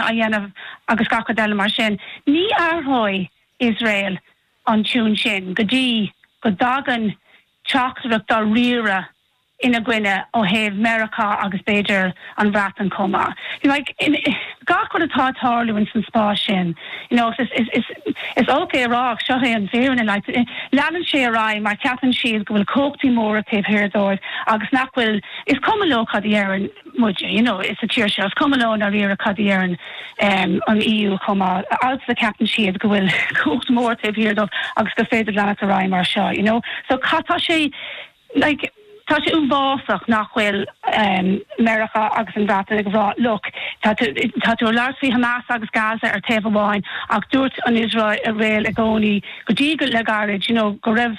a dhéanamh agus gach rud eile mar sin. Ní athróidh Iosrael an tiún sin go dtí go dtagann teachtaireacht dáiríre ina gcoinne ó thaobh Meiriceá agus b'fhéidir an Bhreatain chomh maith. Gach rud atá ag tarlú in san spás sin, is olc é a rá ach seo é an fírinne, leanann sé ar aghaidh mar cheapann siad go bhfuil cumhachtaí móra taobh thiar dóibh agus nach bhfuil, is cuma leo cad a dheireann. muid, you know, sa tír seo. Is cuma leo i ndáiríre cad a dheireann an EU chomh maith. As long as ceapann siad go bhfuil cumhacht mhór taobh thiar dóibh agus gur féidir leanacht ar aghaidh mar seo, you know. So cad tá sé like tá sé uafásach nach bhfuil Meiriceá agus an Bhreatain ag rá look tá tú tá tú ag labhairt faoi Hamas agus Gaza ar taobh amháin ach dúirt an Iosrael i gcónaí go dtí le gairid, you know, go raibh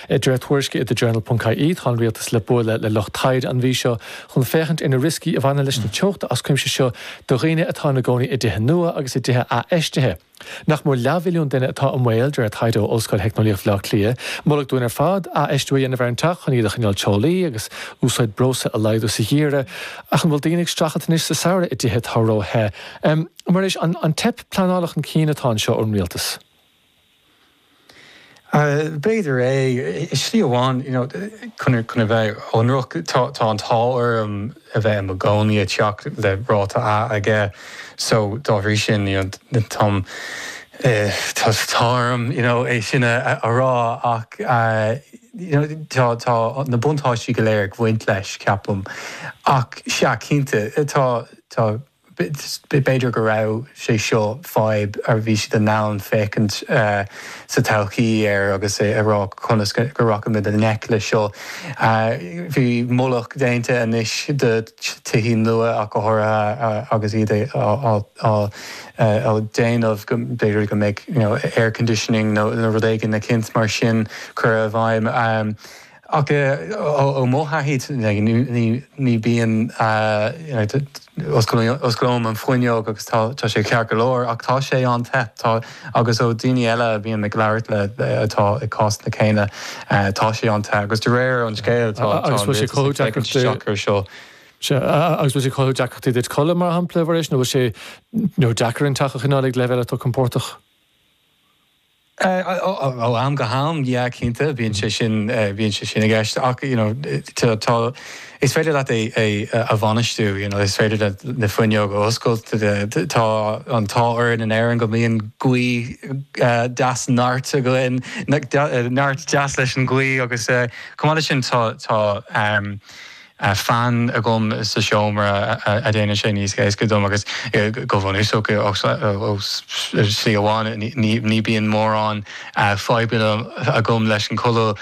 I dréacht-thuairisc i The Journal ponc IE, tá an rialtas le bualadh le lucht taighde an mhí seo chun féachaint ar na rioscaí a bhaineann leis na teochta as cuimse seo do dhaoine atá ina gcónaí i dtithe nua agus i dtithe athfheistithe. Nach mór leathmhilliún duine atá i mbaol, de réir taighde ó Ollscoil Theicneolaíocht Bhaile Átha Cliath. Moladh dúinn ar fad athfheistiú a dhéanamh ar ár dteach chun é a choinneáil teolaí agus úsáid breosla a laghdú sa gheimhreadh ach an bhfuil daoine ag streachailt anois sa samhradh i dtithe atá ró-the? Muiris, an teip pleanála chun cinn atá anseo ón rialtas? B'fhéidir é. I slí amháin, you know, chun a bheith ionraic, tá an t-ádh orm a bheith i mo gcónaí i dteach le ráta 'A' aige, so dá bhrí sin, you know, táim, tá orm, you know, é sin a rá ach, you know, tá na buntáistí go léir ag baint leis, ceapaim. Ach sea, cinnte, tá, tá. B'fhéidir go raibh sé seo fadhb a bhí siad in ann féachaint sa todhchaí air agus a rá conas go rachaimid i ngleic leis seo. Bhí moladh déanta anois do tithí nua ach go háirithe agus iad á déanamh go mb'fhéidir go mbeadh air conditioning nó rud éigin eicínt mar sin curtha i bhfeidhm. Ach ó mo thaithí ní bíonn, osclaím an fuinneog agus tá sé ceart go leor ach tá sé an-te agus ó dhaoine eile a bhím ag labhairt le atá i cásanna céanna tá sé an-te agus de réir an scéil tá an rialtas ag féachaint isteach ar seo. Sea, agus bhfuil sé ag cothú deacrachtaí duit codladh mar shampla, Mhuiris, nó bhfuil sé deacair an teach a choinneáil ag leibhéal atá compordach? Ó am go ham, yeah, cinnte, bíonn sé sin, bíonn sé sin i gceist ach, you know, tá, tá, is féidir leat é, é a bhainistiú, you know, is féidir na fuinneoga a oscailt, tá an t-ádh orainn in Éirinn go mbíonn gaoth deas neart againn, neart deas leis an ngaoth agus, chomh maith leis sin tá, tá, a fan agam sa seomra a dhéanann sé níos éasca dom agus go bhunúsach ó slí amháin ní bíonn mórán fadhbanna agam leis an codladh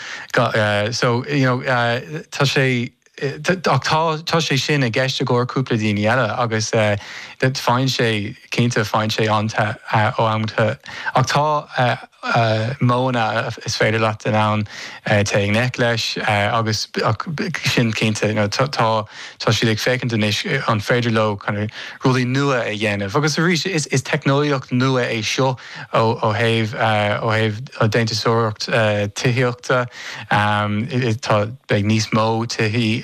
so you know tá sé ach tá tá sé sin i gceist i gcomhair cúpla daoine eile agus faigheann sé cinnte faigheann sé an-te uaireanta ach tá modhanna is féidir leat in ann téigh i ngleic leis agus ach sin cinnte you know tá tá siad ag féachaint anois an féidir leo kind of rudaí nua a dhéanamh agus arís is is teicneolaíocht nua é seo ó ó thaobh ó thaobh déantúsóireacht tithíochta tá beidh níos mó tithe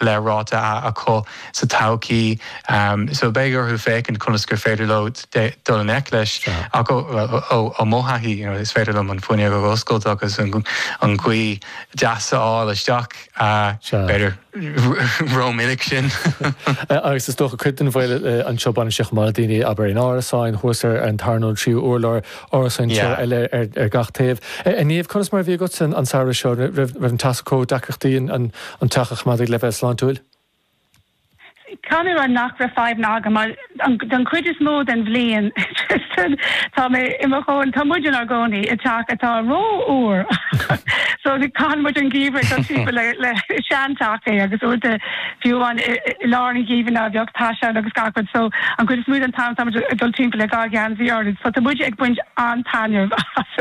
le ráta A acu sa todhchaí so beidh orthu féachaint conas gur féidir leo dul i ngleic leis ach ó mo thaithí is féidir liom an fuinneog a oscailt agus an ghaoth deas a fháil isteach b'fhéidir rómhinic sin. Agus is dócha cuid den bhaol anseo baineann sé chomh maith le daoine abair in árasáin thuas ar an tarna nó an tríú urlár árasáin teo eile ar gach taobh. A Niamh conas mar a bhí agatsa an samhradh seo raibh an teas ag cothú deacrachtaí an teach a choimeád ag leibhéal sláintiúil? Caithfidh mé a rá nach raibh fadhbanna agam mar don chuid is mó den bhliain, Tristan, tá mé i mo chónaí, tá muid inár gcónaí i dteach atá ró-fhuar so caitheann muid an geimhreadh ag dul timpeall le, le, sean teach é agus uaireanta fiú amháin i lár an gheimhridh ná beadh teas ann agus gach rud so an chuid is mó den t-am tá muid ag dul timpeall le dhá gheansaí orainn so tá muid ag baint an-taitneamh as.